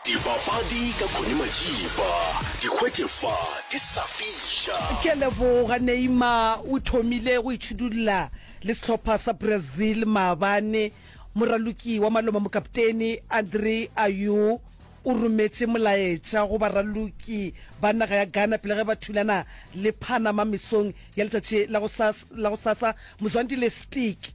Dipapadi ka Connie Majiba, di hwetše fa di sa fiša. Ke a leboga. Neymar o thomile go itšhidulla le sehlopha sa Brazil maabane. Moraloki wa maloma mokapteni Andre Ayew o rometše molaetša go baraloki ba naga ya Ghana pele ge ba thulana le Panama mesong ya letšatši la gosasa. Mzwandile Stick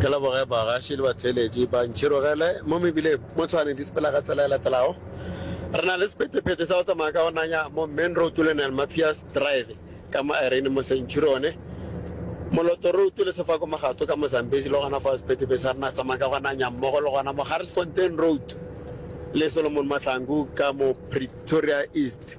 Ke leboge bagaši le batheeletši ba ntšhirogele mo mebileng mo Tshwane di sepela ka tsela e latelago. Re na le sephethephethe sa go tsamaya ka go nanya mo Main Road le Nel Matthias Drive ka mo Irene mo Centurione, Moloto Road le Sefako Magato ka mo Zambezi le gona fao sephethephethe sa rena se tsamaya ka go nanya mmogo le gona mo Garsfontein Road le Solomon Mahlangu ka mo Pretoria East.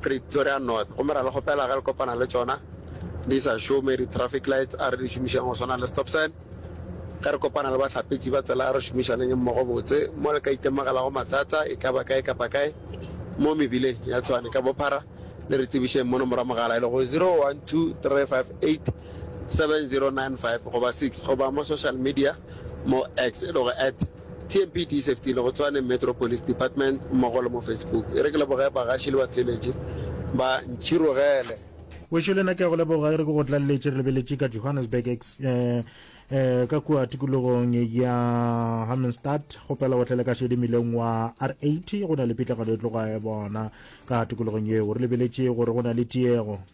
Pretoria North gomme ra le kgopela ge le kopana le tšona di sa šome di traffic lights a re di šomišeng go swana le stop sign ge re kopana le bahlapetši ba tsela a re šomišaneng mmogo botse mo le ka itemogelago mathata e ka ba kae kapa kae mo mebileng ya Tshwane ka bophara le re tsebišeng mo nomoro ya mogala e lego 0123587095 goba 6 goba mo social media mo X e lego at TMPD e sefetile go Tshwane Metro Police Department mmogo le mo Facebook. E re ke leboge bagaši le batheeletši ba Ntšhirogele. Wešo le nna ke a go leboga, e re ke go tlalletše re lebeletše ka Johannesburg ex e ka kua tikologong ya Hammenstadt. Kgopela go tlele ka šedi mmileng wa R80, go na le pitlagano e tloga e bona ka tikologong yeo. Re lebeletše gore go na le tiego.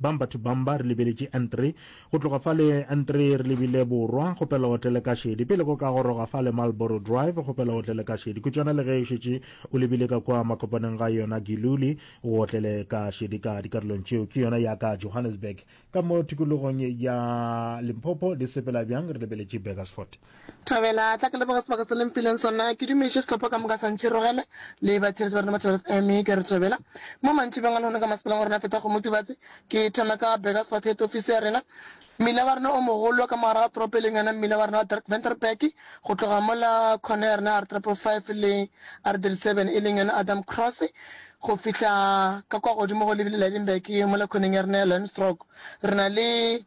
Bang batho bang ba re lebeletše N3. Go tloga fa le N3 re lebile borwa, go pela otle le ka šedi. Pele go ka goroga fa le Marlborough Drive, go pela otle le ka šedi. Kutšwana le ge o šetše o lebile ka kua makopaneng ga yona Giluli, o otle le ka šedi ka dikarolong tšeo. Ke yona ya ka Johannesburg. Ka mo tikologong ya Limpopo, di sepela bjang re lebeletše Burgersfort. Thobela, tla ke leboge sebaka se le mfileng sona. Ke dumetše sehlopha ka moka sa Ntšhirogele le batheletši ba rena ba Thobela FM. Ke re thobela. Mo mantšibeng a lehono ka masepaleng wa rena Feta Kgomo Tubatse, ke thoma ka Burgers Fort Head Ofisi ya rena. Mmila wa rena o mogolo ka mogare ga toropo e leng yona mmila wa rena wa Dirk Venterberg, go tloga mola khone ya rena ya R-Triple Five le R-Thirty Seven e leng yona Adam Cross go fihla ka kwa godimo go lebile Lydenburg mola khoneng ya rena ya Lionstrog. Re na le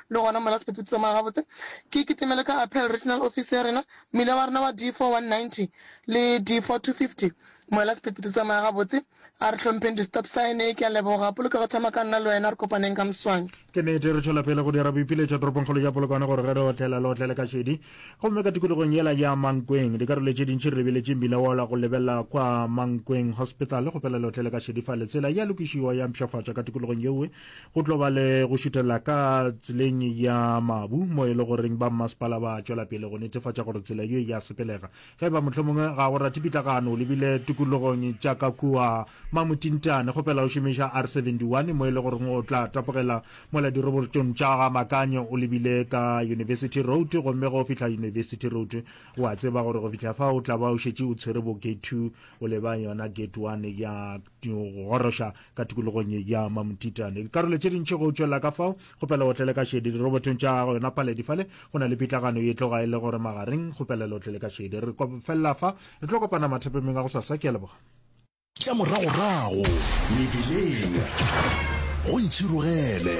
Le gona mola sephetho tsamaya gabotse, ke kitimele ka Apel Regional Office ya rena, mmila wa rena wa D4190 le D4250. Mola sephetho tsamaya gabotse, a re hlompheng di-stop sign. Ke a leboga. Polokego thama ka nna le wena, re kopaneng ka moswane. Ke nete, re tšwela pele go dira boipiletšo toropongkgolo ya Polokwane gore ge re otlela, le otlele ka šedi. Gomme ka tikologong yela ya Mankweng, dikarolo tše dintši re lebeletše mmila wola go lebelela kwa Mankweng Hospital go phela le otlele ka šedi fa le tsela ya lokišiwa ya mpšhafatšwa ka tikologong yewe. Go tlo ba le go šutelela ka tseleng ya mabu mo e le goreng ba mmasepala ba tšwela pele go netefatša gore tsela ye ya sepelega. Ge e ba mohlho mongwe ga go rate pitlagano o lebile tikologong tša ka kua Mamotintane, kgopela o šomiša R71 mo e le goreng o tla tapogela mola dirobotong tša ga Makanyo o lebile ka University Road gomme go fihla University Road. O a tseba gore go fihla fa o tla ba o šetše o tshwere bo Gate 2 o leba yona Gate 1 ya go goroša ka tikologong ya mamthitane dikarolo tše dintšhi go tšwelela ka fao kgopela o tlele ka šedi dirobotong tša gago yona paledi fale go na le pitlagano ye tloga e le gore magareng kgopelela o tlele ka šedi re felela fa re tlo kopana mathapemeng a go sasa ke a leboga tša moragorago mebileng go ntšhirogele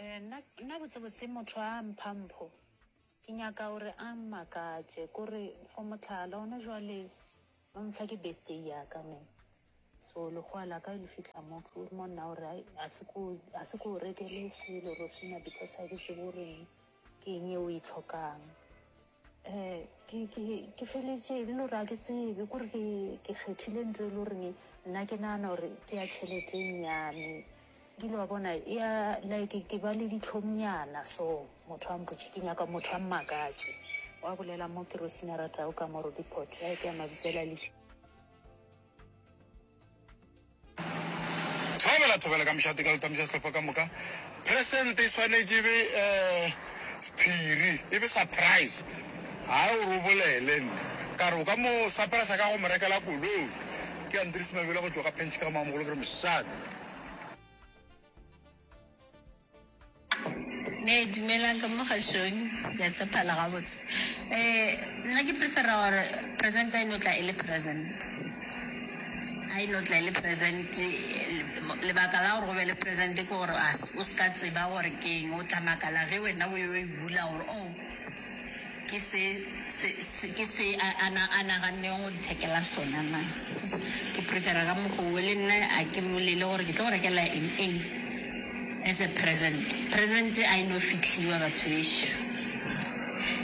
Ee, nna, nna botsebotse motho a mpha mpho, ke nyaka gore a mmakatše, kore for mohlala gona jwale ba mpha ke birthday yaka me so lekgowa laka le fihla mo ke mo nna gore ai a se ko a se ko rekele selo rosina because a ke tsebe goreng ke eng e o e tlhokang Ke, ke, ke feletše e le gore ga ke tsebe kore ke, ke kgethile ntlo e le gore nna ke nagana gore ke ya tšheleteng ya me. Ke ile wa bona e ya like ke ba le ditlhongnyana so, motho a mpotše ke nyaka motho a mmakatše. Wa bolela mo ke rosina a ratago ka mo Roodepoort, ya e ke ya Mabitsela le. Thabela Thobela ka mošate ka go tamisa sehlopha ka moka. Present e swanetše e be sephiri, e be surprise. Haa o re o bolele nna ka re o ka mo surprisa ka go mo rekela koloi. Ke Andries Mabele go tšwa ka Pench ka Mamogolo ke re mošate. ne dumelang ka mo gashong ya tshephala gabotse um nna ke prefera gore present a e no tla e le present a e no tla e le present lebaka la gore go be le present ke gore o se ka tseba gore ke eng o tla makala ge wena o yo e bula gore o Ke se, se, se, ke se a, a, na, a nagannego go nthekela sona na? Ke prepare ka mokgo wo, le nna a ke bolele gore ke tlo go rekela eng, eng as a present. Present a e no fihliwa, batho bešo.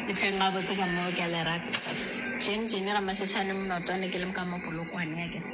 Le hleng gabotse ka mo ke a le rata. Jane, Jane Ramašešane Mnotwane, ke le ka mo Polokwane, akere.